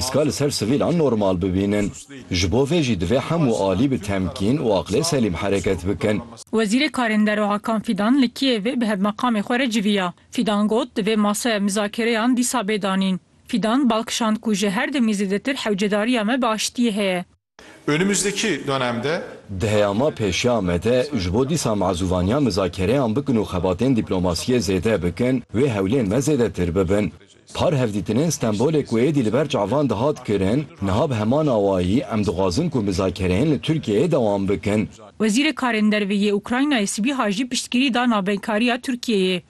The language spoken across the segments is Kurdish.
Piska li ser sivîlan normal bibînin. Ji bo vê jî divê hemû alî bi temkîn û aqlê selîm hereket bikin. Wezîrê Karên Derve Hakan Fîdan li Kîevê bi hevmeqamê xwe re civiya. Fîdan got, divê masaya mizakereyan dîsa bê danîn. Fîdan bal kişand ku ji her demê zêdetir hewcedariya me bi aştiyê heye. Önümüzdeki dönemde. Di heya ma pêşiya Amedê ji bo dîsa mazûvaniya mizakereyan bikin û xebatên dîplomasiyê zêde bikin, wê hewlên me zêdetir bibin. Par hevdîtinên Stenbolê ku êdî li ber çavan dihat kirin, niha bi heman awayî em dixwazin ku mizakereyên li Tirkiyeyê dewam bikin. Wezîrê Karên Derve yê Ukraynayê Sibîha jî piştgirî da navbeynkariya Tirkiyeyê.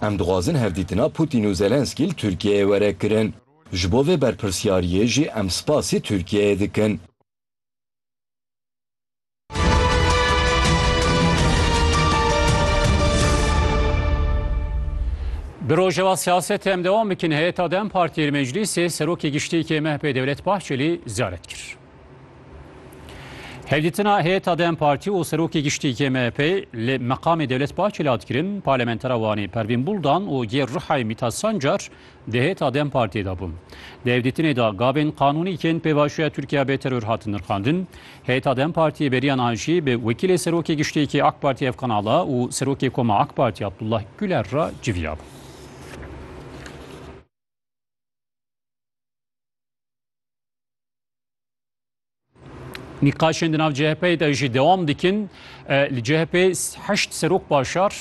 Em dixwazin hevdîtina Putîn û Zelensky li Tirkiyeyê were kirin. Ji bo vê berpirsyariyê jî em spasî Tirkiyeyê dikin. Bi Rojava siyasetê em dewam bikin. Heyeta dem Partiyê li Meclîsê Serokê Giştî yê MHP'ê Dewlet Bahçelî ziyaret kir. Hevdîtina heyeta dem Partî û Serokê Giştî yê MHP'ê li meqamê Dewlet Bahçelî hat kirin. Parlamentera Wanê Pervîn Buldan û yê Rihayê Mîtat Sancar Di hêta dem Partiyê de bûm. Di hevdîtinê de gavên qanûnî yên pêvajoya Tirkiye bê teror hatin nirxandin. Hêta dem Partiyê beriyan an jî bi wekîlê Serokê Giştîyekî AK Partiyê Efkan Ala û Serokê Koma AK Partiyê Abdullah Guler re civiya bû. Nîqaşên di nav CHP'yê de jî dewam dikin. Li CHP heşt serok başar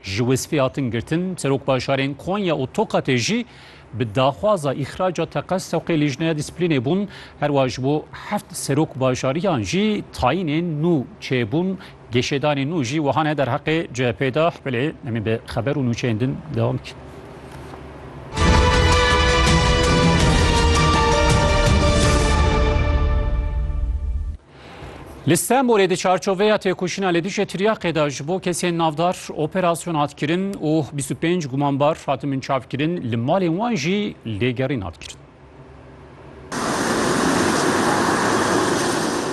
ji wesfê hatin girtin. Serok başarên Konya û Tokatê jî bi daxwaza îxraca teqez sewqê lîjneya dîsiplînê bûn. Herwa ji bo heft serok başariyan jî tayînên nû çêbûn Geşedanê nû jî wiha ne derheqê CHP'ê de, belê em ê bi xeber û nûçeyên din dewam bikin. Li Stenbolê di çarçoveya têkoşîna li dijî tiryaqê de ji bo kesên navdar operasyon hat kirin û 25 gumanbar hatin binçavkirin li malên wan jî lêgerîn hat kirin.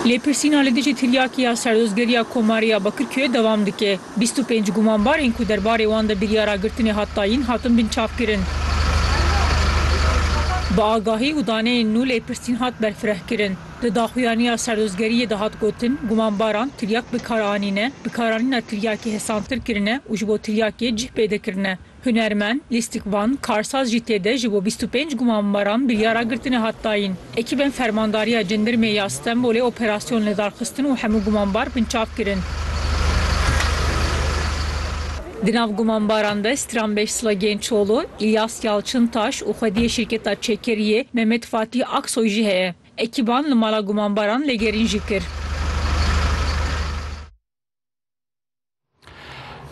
Lêpirsîna li dijî tiryakiya Serdozgeriya Komarê ya Bakirkûyê dewam dike. Bîst û pênc gumanbarên ku derbarê wan de biryara girtinê hat dayîn hatin binçavkirin. Bi agahî û daneyên nû lêpirsîn hat berfirehkirin. Di daxuyaniya Serdozgeriyê de hat gotin, gumanbaran tiryak bikar anîne, bikaranîna tiryakê hesantir kirine û ji bo tiryakê cih pêde kirine. Hunermend, lîstikvan, karsaz jî tê de ji bo bîst û pênc gumanbaran biryara girtinê hat dayîn. Ekîbên Fermandariya Cindirmê ya Stenbolê operasyon li dar xistin û hemû gumanbar binçav kirin. Di nav gumanbaran de stranbêj Slagên Çolo, Îlyas Yalçintaş û xwediyê şîrketa Çekeriyê Mehmet Fatîh Aksoy jî heye. Ekîban li mala gumanbaran lêgerîn jî kir.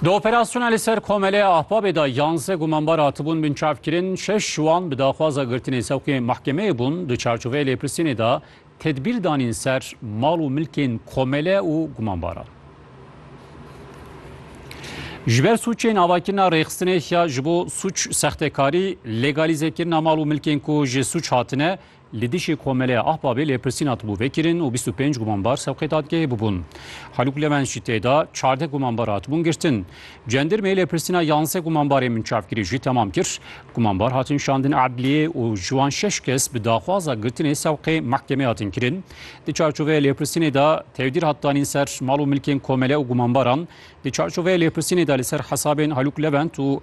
Di operasyona li ser Komelê Ahbabê de yanze gumanbar hatibûn binçavkirin, şeş ji wan bi daxwaza girtinê sewqê mahkemeyê bûn, di çarçoveyê lêpirsînê de tedbîr danîn ser mal û milkên Komele û gumanbaran. Ji ber sûcên avakirina rêxistinê ya ji bo sûc sextekarî, legalîzekirina mal û milkên ku ji sûc hatine, Li dijî Komeleya Ahbabê lêpirsîn hatibû vekirin û bîst û pênc gumanbar sewqê dadgehê bûbûn. Halûk Levens jî tê de çardeh gumanbar hatibûn girtin. Cendirmê lêpirsîna yanze gumanbarên binçavkirî jî temam kir. Gumanbar hatin şandin edliyê û ji wan şeş kes bi daxwaza girtinê sewqê mehkemê hatin kirin. Di çarçoveya lêpirsînê de tevdîr hat danîn ser mal û milkên komele û gumanbaran. Di çarçoveya lêpirsînê de li ser hesabên Halûk Levent û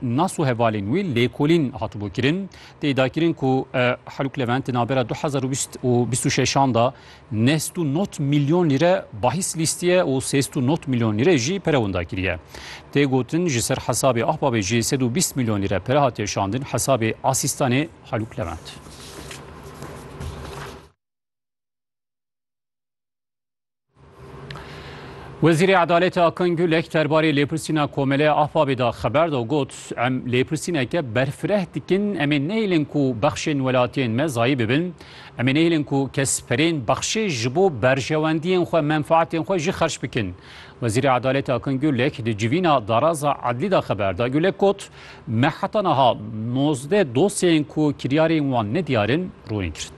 Nas û hevalên wî lêkolîn hatibû kirin. Tê dakirin ku Haluk Levent di navbera du hezar û bîst û bîst û şeşan de neh sed û nod milyon lîre bahîs lîstiye û sê sed û nod milyon lîre jî pere winda kiriye. Tê gotin ji ser hesabê Ahbabê jî sed û bîst milyon lîre pere hatiye şandin hesabê asîstanê Haluk Levent. Wezîrê Edaletê Akan Gulek derbarê lêpirsîna Komeleya Ahbabê de xeber da got, Em lêpirsîneke berfireh dikin, em ê nehêlin ku bexşên welatiyên me zayî bibin, em ê nehêlin ku kes perên bexşê ji bo berjewendiyên xwe, menfaetên xwe jî xerç bikin. Wezîrê Edaletê Akan Gulek di civîna Daraza Edlî de xeber da. Gulek got, Me heta niha nozdeh dosyeyên ku kiryarên wan nediyar in rûnîn kirin.